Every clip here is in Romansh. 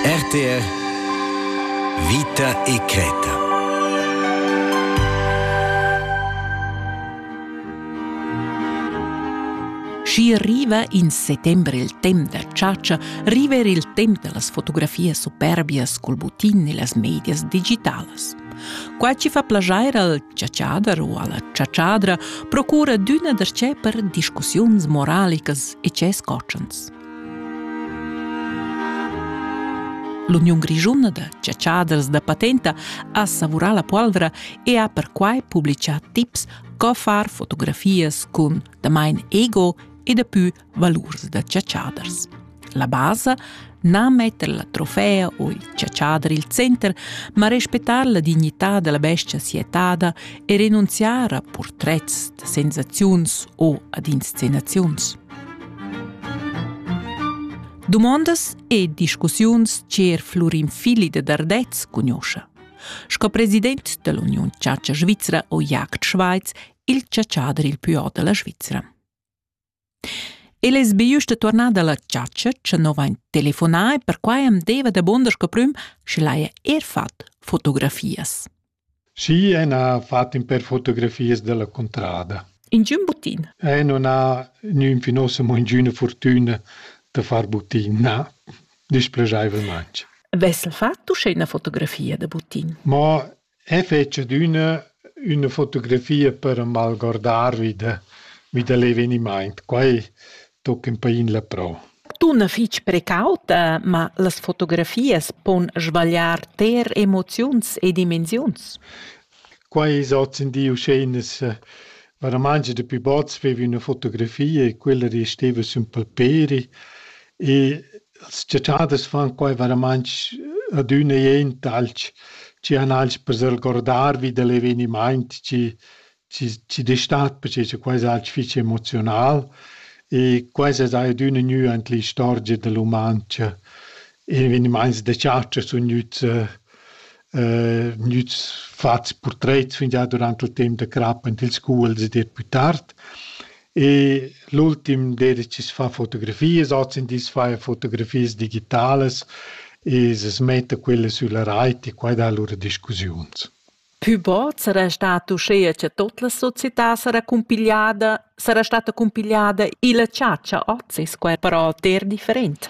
RTR Vita e Creta Schi riva in settembre il temp da chatscha, riva er il temp da las fotografias superbias col butin e las medias digitalas. Qua ci fa plagiair al chatschader o alla chatschadra procura d'üna darchè per discussiuns moralicas e ces cotschens. L'Uniun grischuna da chatschaders da patenta ha savurà la polvra e ha perquai publitgà tips co far fotografias cun damain ego e dapü valurs da chatschaders. La basa na metter la trofea u il chatschader il center, ma respettar la dignità della bestia sietada e renunziare a portrets da sensaziuns o ad inscenaziuns. Dumondas e discussiuns cher Flurin Fili de Dardez cugnoscha. Sco president dell'Union Chatscha Svizzera o Jagd Schweiz, il ciaciader il più della Svizzera. El es be justa tornada alla chatscha, che no vain telefonà e perquai am deva da bonder sco prüm, sche l'haja er fat fotografias. Sì, en ha fatto in per fotografias della contrada. Ingiun butin? Eh, non ha nün finosa mo ingüna fortüna da far butin, na, displegaivelment. Vessel fatto uscè una fotografia da butin? Ma e fece d'una una fotografia per malgordarvi da, vi da l'eveniment. Quai tochen pain la prau. Dunna fitg precauta, ma las fotografias pon sbagliar ter emoziuns e dimensiuns. Quai es oz in di uscheinas eh, varamanga da pü bots vevi üna fotografia e quella resteva sün palperi e las ciaciadas fan quai varamang adüna jent alch, chi han alch per s'algordar vi da l'evenimaint chi ci, ci destat perché che quai è fich emozional e quai es adüna gnü ant l'istorgia da l'umancha. Evenimaints da chatscha sun gnüts gnüts fats purtrets fingià durant il temp da crap ant ils scuols ed eir pü tard. E l'ultim d'eira chi's fa fotografias, ozindi as faja fotografias digitalas e s'metta quella sülla rait e quai dà lura discussiuns. Pü bod sarà stat uschea cha tot la società sarà cumpigliada, sarà stata cumpigliada illa chatscha hoz es quai però ter different.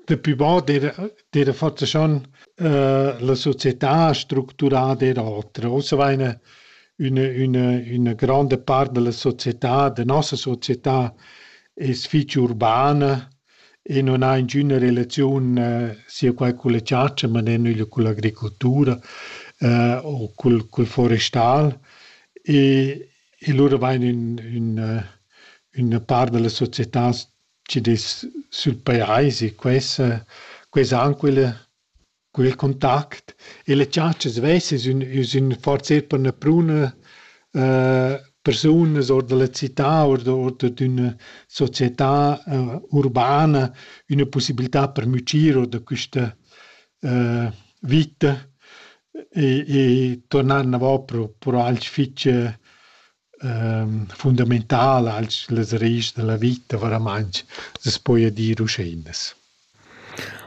Dapü bod d'eira d'eira fatta schon la società structurada eir oter. Ussa vaina üna üna üna granda part da la società, da nossa società es fich urbana E non ha ingüna relaziun sia qua culla chatscha, ma ner nügl culla agricoltura u cul cul forestal. E e lura vain ün ün üna part da la società chi'd es sül pajais e questa questa anquela Cul contact e le tschatschas vesas ün üs ün forsa ir per üna pruna persunas our da la città, our da our d'üna società urbana, üna pussibiltà per mügir our da quista vita e e turnar inavò pro pro alch fich fundamentala als las raischs da la vita varamaing, s'es poja dir uscheinas.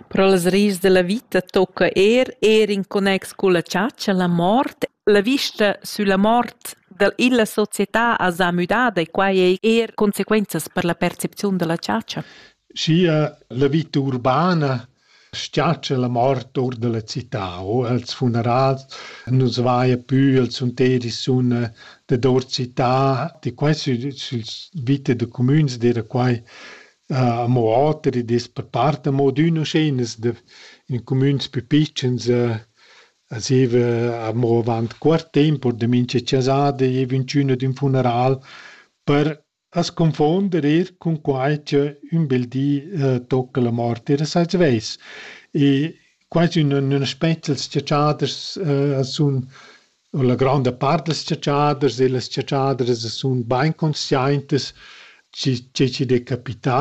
Però las raischs da la vita tocca eir eir in connex culla chatscha, la mort. La vista sulla mort da illa società as ha müdada e quai ei eir consequenzas per la percepiziun da la chatscha. Sia la vita urbana Sgiatscha la mort our da la cità o als funerals nu's vaja pü, els sun teri suna dador cità, di quai sü sül vita da cumüns d'eira quai amo oter, id es per part amo ad üna uscheinas da in cumüns pü pitschens a zieva amo avant cuort temp, or da mincha chasada, i giaiva ünchün ad ün funeral per As confuonder eir cun quai cha ün bel di tocca la mort eir a svess. E quai es ün ün aspect dals chatschaders a sun u la granda part dals chatschaders e las chatschadras a sun bain consciaintas chi chi chi'd è capità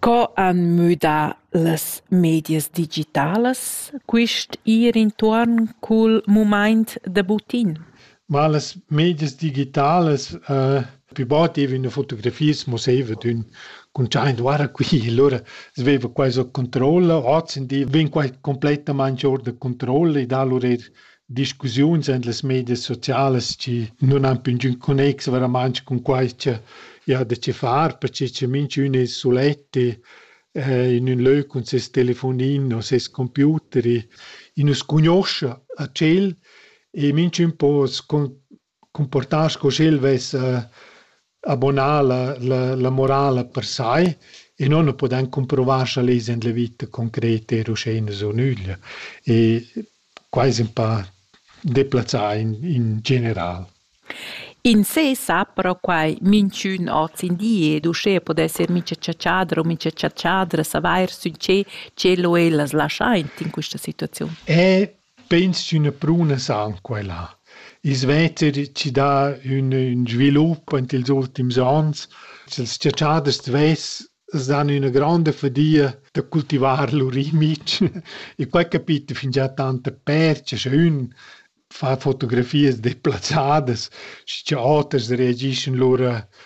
Co han müdà las medias digitalas quist ir intuorn cul mumaint da butin? Ma las medias digitalas eh pü bod giavina fotografias musaivat ün cuntschaint guarda qui, lura sveiva quai so controlla, ozzendi vegn quai cumplettamaing our da controlla e da lur eir discussiuns en las medias socialas chi nun han più ingün connex veramente cun quai cha i ha da che far, perche cha minchün es sulet in ün lö cun ses telefonin o ses computer e nu scugnuoscha a tschel e minchün po cumportar sco sch'el vess abonà la, la, la morala per sai e non ho podan cumprovar scha lez in la vita concreta er uschè ina so nüglia. E quai es ün pa deplazzà in, in general. In sé sa però quai minchün hoz in di ed uschè podess ir mincha chatschadra u mincha chatschadra savair sün che tschelo ellas laschaint in quista situaziun. E Peins ch'üna pruna san quai là. I svetter chi dà ün ün svilup aint ils ultims ons. Sels chatschaders d'vess s'dan üna gronda fadia da cultivar lur imic e quai capita fingià tanta percha scha ün fa fotografias deplazzadas schi cha oters reagischan lura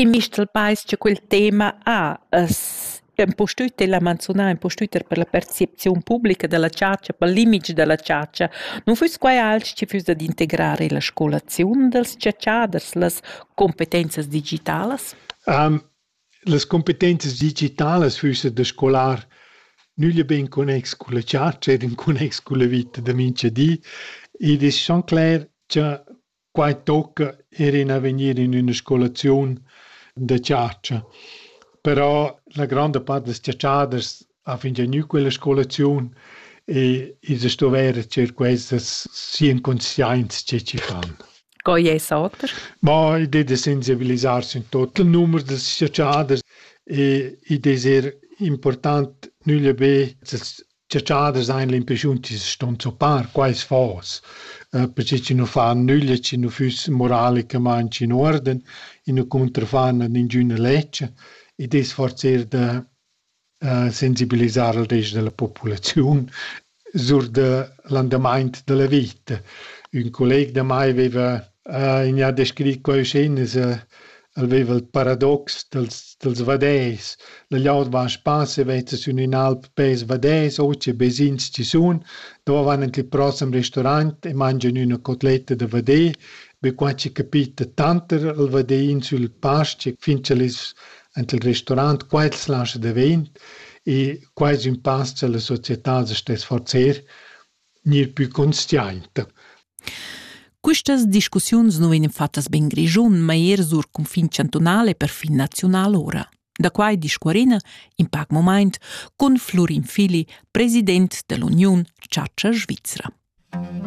In mistel peis cha quel tema ha es impustüt el ha manzunà impustüt er per la percepziun publica da la chatscha, pel limit da la chatscha. Nu füss quai alch chi füss dad integrar illa scolaziun dals chatschaders, las cumpetenzas digitalas? Las cumpetenzas digitalas füssan da scolar nüglia be in connex culla chatscha ed in connex culla vita da mincha di. Id es schon cler cha Quai tocca er in avegnir in üna scolaziun da chatscha. Però la gronda part dals chatschaders ha fingià gnü quella scolaziun e ils sto vair cher questas sia inconscienza che chi fan. Co es sauter? Ma id es da sensibilisar in tot il numer dals chatschaders e id es er important nüglia be als Ciaciaders ein l'impressiun chi ston zoppar quais fos, perche chi nu fan nüglia, chi nu füss moralicamaing in uorden, i nu cuntrafan ad ingüna lezcha. Id es forser da sensibilisar al rest da la populaziun sur da l'andamaint da la vita. Ün colleg da mai veva in ha descrit coischinas el veva il paradox dels dels vaders. La gliaud va a spass e veta sün ün'alp pels vaders, o che vesins chi sun, dove van ant il prossem restaurant e mangian üna cotletta da vader. Be qua chi capita tanter il vaderin sül pastg fin ch'el es ant il restaurant, qua el slascha davent e qua es ün pass cha la società as sta sforzer ni il pü consciaint. Quistas discussiuns nu vegnan fattas be in Grischun, ma eir sur cunfin chantunal e perfin naziunal ora. Da quai discuorina in pac momaint cun Flurin Fili, president dell'Uniun Chatscha Svizra.